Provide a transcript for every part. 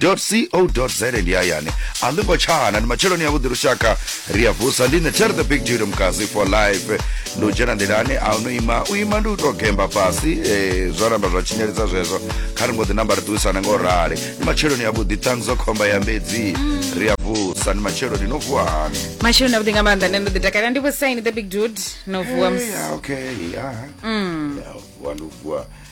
co za ndi hayani a ḽi ngo tshana ndi matsheloni a vhuḓi lushaka ri a vusa ndi ṋetshare the big judo mkazi for life ndi u dzhena nḓilani a no ima u ima ndi u tou gemba fhasi um zwa namba zwa tshinyelisa zwezwo kha ri ngo ḓi namba ri ṱuwisana nga u rali ndi matsheloni a vhuḓi ṱanzo khomba ya mbedzi ri a vusa ndi matsheloni no vuwa hani masheloni avhuḓi nga maanḓa nṋe ndo ḓi takalela ndi vhusaini the big dude no vuwa mus- Eh, ya, okay ya ya vuwa ndi u vuwa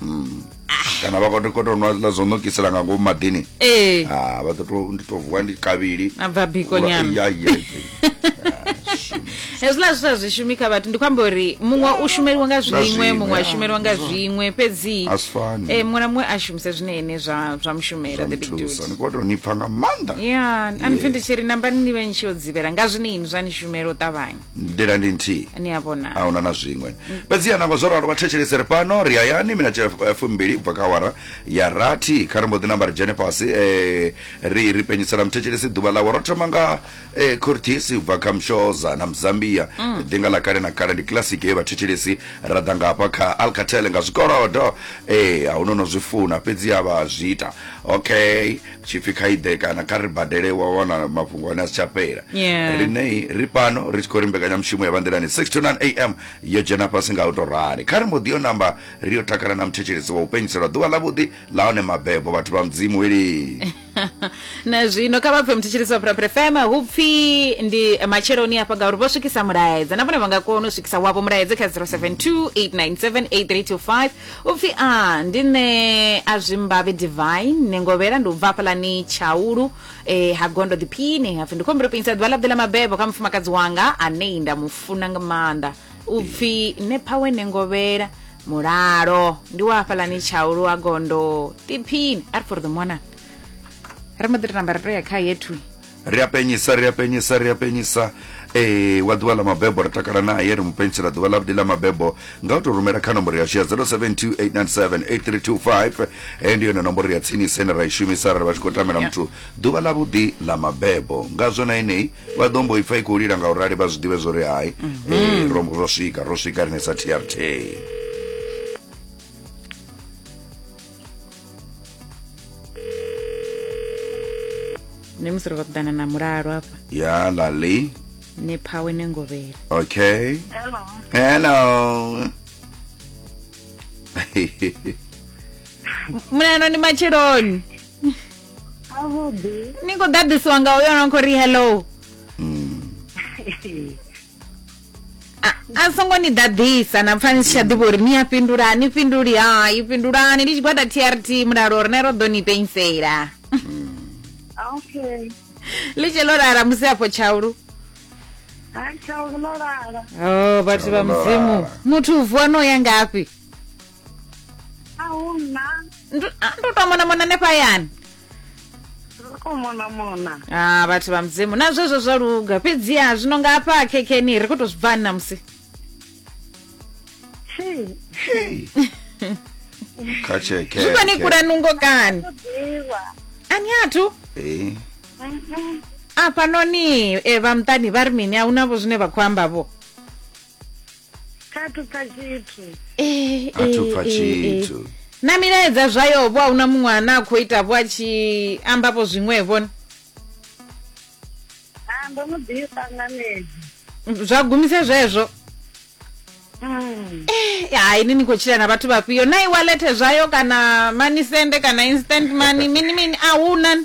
hmm. ah. kana vha khoto khoto nwa la zono kisela nga ngomu madini eh ah vha to ndi to vuwa ndi kavili a bva biko nyama ya ya hezwiḽa zwi sa zwi shumi kha vhathu ndi khou amba uri muṅwe u shumeliwa nga zwiṅwe muṅwe a shumeliwa nga zwiṅwe fhedzi eh, muṅwe na muṅwe a shumise zwine ene zwa zwa mushumela the big dude ni khou tou ni pfa nga maanḓa ya ani pfhi ndi tshi ri nambani ni vhe ni tshi yo dzivhela nga zwine ini zwa ni shumela u ṱavhanya nḓila ndi nthihi ni a vhona a huna na zwiṅwe fhedziha nangwe zwo ralo vha thetshelese ri fhano ri hayani minete eh, fumbili ubva kha awara ya rathi kha ri mbo ḓi namba ri dzhene fhasi eh, ri ri penyisela muthetshelesi ḓuvha ḽawe ro thoma nga eh, cortis ubva kha mshoza na mzambia ḓinga ḽa kale na kale ndi kilasiki ye vhathetshelesi ra ḓa ngafha kha alcatel nga zwikolodo eh, a huno no zwi funa fhedziha vha zwi ita okay tshipfi kha iḓe kana kha ri badele wa wana mafhungo ane a si tsha fhela Yeah. riṋei ri pano ri tshi khou ri mbekanyamushumo ya vhanḓilani 6 to 9 am yo dzhena fhasi nga u tou rali kha ri mbo ḓi yo namba ri yo takala na muthetshelesi wa u penyiselwa ḓuvha ḽavhuḓi la hone mabebo vhathu vha mudzimu weli na zwino kha vha pfe muthetshelesi wa phuraphura fm hu pfi ndi matsheloni hafha ngauri vho swikisa mulaedza na vhone vha nga kona u swikisa wavho mulaedza kha 0728978325 Upfi a ndi nṋe a zwi mbavhe divine ni ngovhela ndi u bva hafhaḽani tshaulu eh, ha gondo ḓiphini hapfi ndi khombiro pinyisa ḓuvha ḽa ḓe ḽa mabebo kha mufumakadzi wanga anei nda mu funa nga maanḓa upfi ne phawe ne ngovhela mulalo ndi wa hafhaḽani tshaulu ha gondo ḓiphini a ri for the mwana ri mbo ḓi tou namba ri tou ya kha yethu ri a penyisa ri a penyisa ri a penyisa e wa ḓuvha ḽa mabebo ri takala naye ri mu pentsela ḓuvha ḽavhuḓi ḽa mabebo nga u tou rumela kha nomboro yashu ya 0728978325 heyo ndi yone nomboro ya tsinisa ine ra i shumisa arali vha tshi khou tamela muthu ḓuvha ḽavhuḓi ḽa mabebo ngazwo na enei vha ḓo mbo ipfa i khou lila nga u rali vha zwi ḓivhe zwo ri hai mhm. e ro ro swika ro swika rine sa trt ne musi ri khou ṱoḓana na mulalo hafha ya lali ne phawe ne ngovhela okay Hello. hello mulalo ndi matsheloni Avhuḓi. ni khou ḓaḓisiwa nga uyo no khou ri hello Mm. a songo ni ḓaḓisa na pfani si tsha ḓivha uri ni a fhindula a ni fhinduli hai fhindulani ndi tshigwada trt mulalo rine ro ḓo ni penisela ah, okay ḽi tshe ḽo lala musi afho tshaulu hai tshaulu ḽo lala o oh, vhathu vha mudzimu muthu u vuwa no ya ngafhi a hu na Ndu- ah, ndi u tou monamona hanefha hayani ri khou monamona ah vhathu vha mudzimu na zwezwo zwa luga fhedziha zwino nga hafha khekeni ri khou tou zwi bvani namusi tshi Hey. Kha tsheke. zwi vhani kula nungo kani ḓivha ani athu Eh. Mhm. afhanoni e vha muṱani vha ri mini a hu navho zwine vha khou amba vho kha thu pfa tshithu Eh, A thu eh, pfa eh, tshithu. eh. na milaedza zwayo vho a huna muṅwe ane a khou ita vho a tshi ambavho zwiṅwevho ni? a ndo no ḓifha nga medi zwa gumise zwezwo Mm. Eh, ya ini ni khou tshila na vhathu vhafhio na iwalete zwayo kana money sende kana instant money mini mini a huna ni?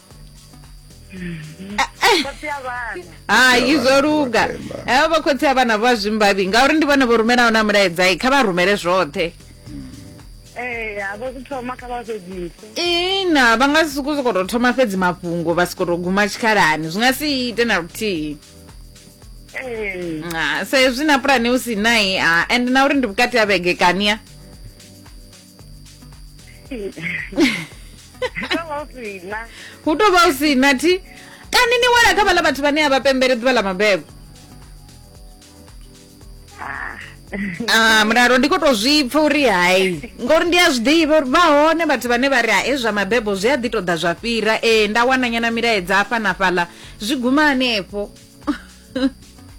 khotsi ya vhana hai zwo luga Vhavenḓa. evo vhakhotsi a vhana vha zwimbavhi ngauri ndi vhone vho rumelaho na mulaedzai kha vha rumele zwoṱhe ee havho zwi thoma kha vha fhedzise ina vha nga si sokou sokou tou thoma fhedzi mafhungo vha sokou tou guma tshikhalani zwi nga si ite na luthihi ee Ah, sa ezwi na pulani u si nai ah, and na uri ndi vhukati ha vhege kania hu tou vha u si na thi kani ni wela kha vhaḽa vhathu vhane a vha pembele ḓuvha ḽa mabebo ah mulalo ndi khou tou zwi pfa uri hai ngori ndi a zwi ḓivha uri vha hone vhathu vhane vha ri hae zwa mabebo zwi a ḓi tou ḓa zwa fhira ee nda wana nyana milaedza afha na fhaḽa zwi guma hanefho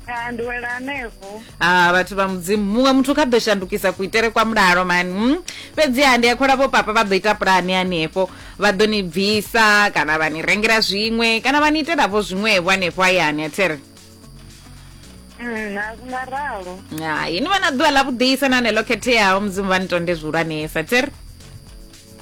Ah, ndi wela hanefho ah vhathu vha mudzimu muṅwe muthu kha ḓo shandukisa kuitele kwa mulalo mani mm? fhedziha ndi a khola vho papa vha ḓo ita pulani hanefho vha ḓo ni bvisa kana vha ni rengela zwiṅwe kana vha ni itelavo zwiṅwevho hanefho hayani athere Mm, a zwi nga ralo hai ni vha na ḓuvha ḽa vhuḓisa na neḽo khetheaho mudzimu vha ni tonde zwihulwanesa athere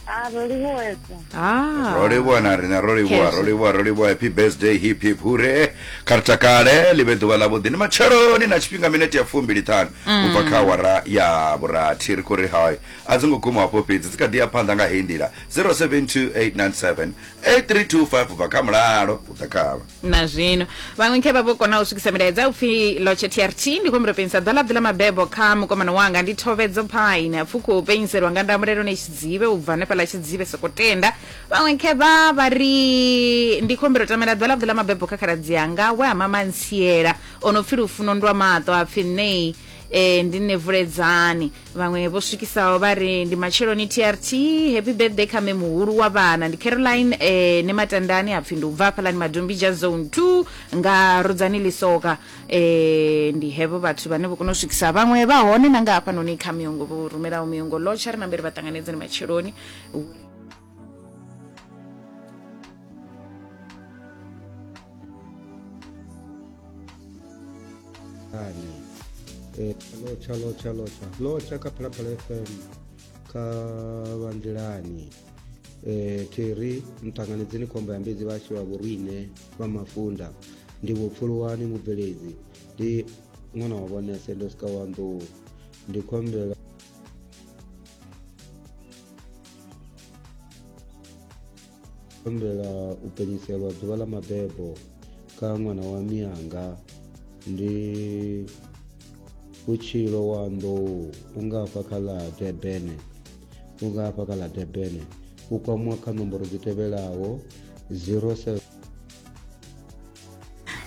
Ah, ro livhuwesa ah ro livhuwa na riṋe ro livhuwa Khezwi. ro livhuwa ro livhuwa happy birthday hip hip hure kha ri takale ḽi vhe ḓuvha ḽavhuḓi ndi matsheloni na tshifhinga minete ya fumbili ṱhanu u bva kha awara ya vhurathi ri khou ri hai a dzi ngo guma hafho fhedzi dzi kha ḓi ya phanḓa nga heyi nḓila 0728978325 u bva kha mulalo u ḓa khavha na zwino vhaṅwe khe vha vho kona u swikisa milaedza upfi lotshe trt ndi khou humbula penyisa ḓala ḓi ḽa mabebo kha mukomana wanga ndi thovedzo phaine apfu khou penyiselwa nga ndamulelo ne tshidzive u bva hanefha ḽa tshidzive soko tenda vhaṅwe khe vha vha ri ndi khou humbela u tamela ḓala ḓi ḽa mabebo kha khaladzi anga we a mama ntsiela o no pfi lufuno ndwa maṱo a pfi ṋei e, ndi nne vuledzani vhaṅwe vho swikisaho vha ri ndi matsheloni trt happy birthday kha me muhulu wa vhana ndi caroline eh, ne matandani apfi ndi ubva hafhalani madombija zone 2 nga rudzani lisoka eh, ndi hevo vhathu vhane vho kona u swikisa vhaṅwe vha hone na nga hafhanoni kha miyongo vho rumelaho miyongo lotsha ri na mberi vha ṱanganedzeni matsheloni Eh, lotsha lotsha lotsha lotsha kha phalaphala fm kha vhandelani eh, theri mṱanganedzeni khombo ya mbedzi vhashu vha vhorine vha mafunda ndi vhopfuluwani mubveledzi ndi ṅwana wa vhonese ndo sika wa nḓou ndi khombela humbela u penyiselwa ḓuvha ḽa mabebo kha ṅwana wa mianga ndi vhutshilo wa nḓou u nga hafha kha ḽa debene u nga hafha kha ḽa debene u kwamwa kha nomboro dzi tevhelaho 07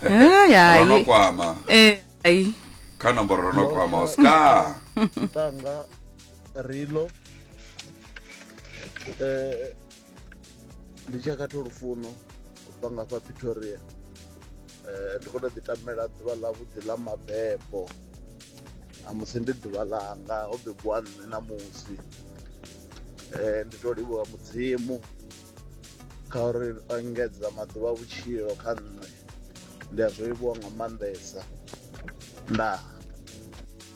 Ai, ai. rono kwama Eh, ai. kha nomboro rono kwama oscar ntanga Rilo eh ndi tshi khatha lufuno u bva nga fha Pretoria eh ndi khou tou ḓi tamela ḓuvha ḽa vhuḓi ḽa mabebo a musi ndi ḓuvha ḽanga ho bebiwa nṋe na musi eh ndi to livhuwa mudzimu kha uri o engedza maḓuvha a vhutshilo kha nṋe ndi a zwi livhuwa nga maanḓesa ndaa.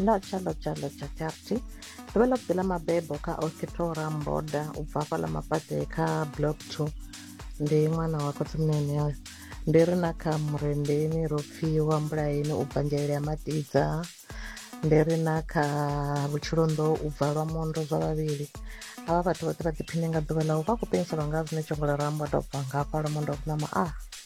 Ndo tshalo tshalo tsha Charity ndo vha ḽa vhuḓi ḽa mabebo kha Okitora Mboda u bva hafhaḽa Mapate kha Block 2 ndi ṅwana wa khotsimnene oyo ndi ri na kha Murendeni ro pfiwa Mbulaeni u bva Nzhelele ya Matidza ndi ri na kha Vhutshilonḓo u bva lwa Mondo zwa vhavhili havha vhathu vhoṱhe vha ḓiphine nga ḓuvha ḽau vha khou penyiselwa nga zwine tshongola rambo a tou bva nga hafha lwa Mondo a kunama a